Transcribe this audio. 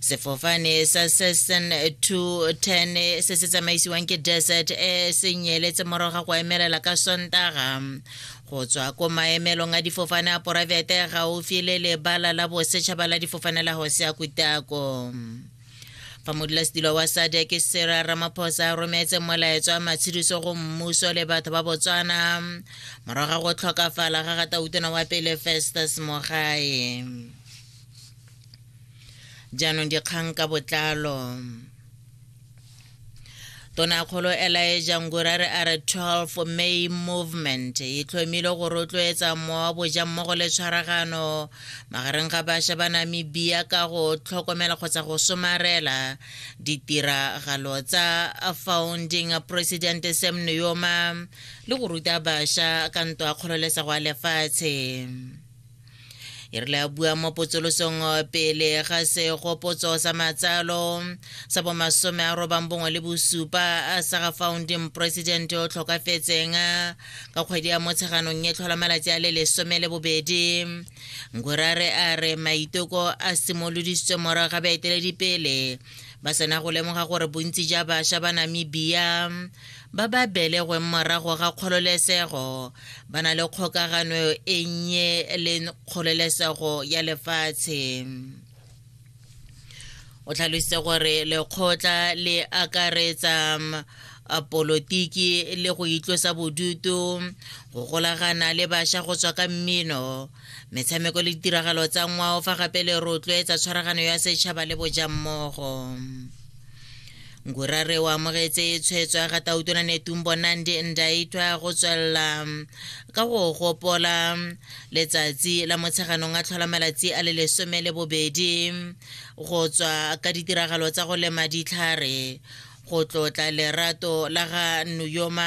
sefofane sa seson 210 se se tsamaisiwang ke desert e se nyeletse morago ga go emelela ka sontaga go tswa ko maemelong a difofane a poraefete gaufi le lebala la bosetšhaba la difofane la hosea kutako fa modulasetilo wa sade ke sera ramaphosa a rometse molaetso wa matshediso go mmuso le batho ba botswana morago ga go tlhokafala ga gatautona wa pele festus mogae jaanong dikgang ka botlalo tonakgolo elaeja ngurare a re 12 may movement e tlhomile go rotloetsa mowa boja mmogo le tshwaragano magareng ga bašwa ba namibia ka go tlhokomela kgotsa go somarela ditiragalo tsa founding president sam nuyoma le go ruta bašwa ka ntwa kgololesego ya lefatshe e re le a bua mo potsolosong eh, pele ga segopotso sa matsalo sa bomasome a robang bongwe le bosupa sa ga founding president o tlhokafetseng ka kgwedi ya motsheganong e tlhola malatsi a le lesome le bobedi nkurare a re maiteko a simolodisitswe morago ga baeteledipele ba sena go lemoga gore bontsi ja bašwa ba namibia ba ba belegweng morago ga kgololesego ba na le kgokagano e nnye le kgololesego ya lefatshe o tlhalositse gore lekgotla le akaretsa polotiki le go itlosa bodutu go golagana le bašwa go tswa ka mmino Metshameko le ditiragalo tsa ngwao fa gape le rotloetsa tshwaragano ya setšhaba le bojammogo. ngurare o amogetse tshwetso ya ga tautona netumbo nandi ndaitwa go tswelela ka go gopola letsatsi la motsheganong a tlhola malatsi a le lesome le bobedi go tswa ka ditiragalo tsa go lema ditlhare go tlotla lerato la ga nuyoma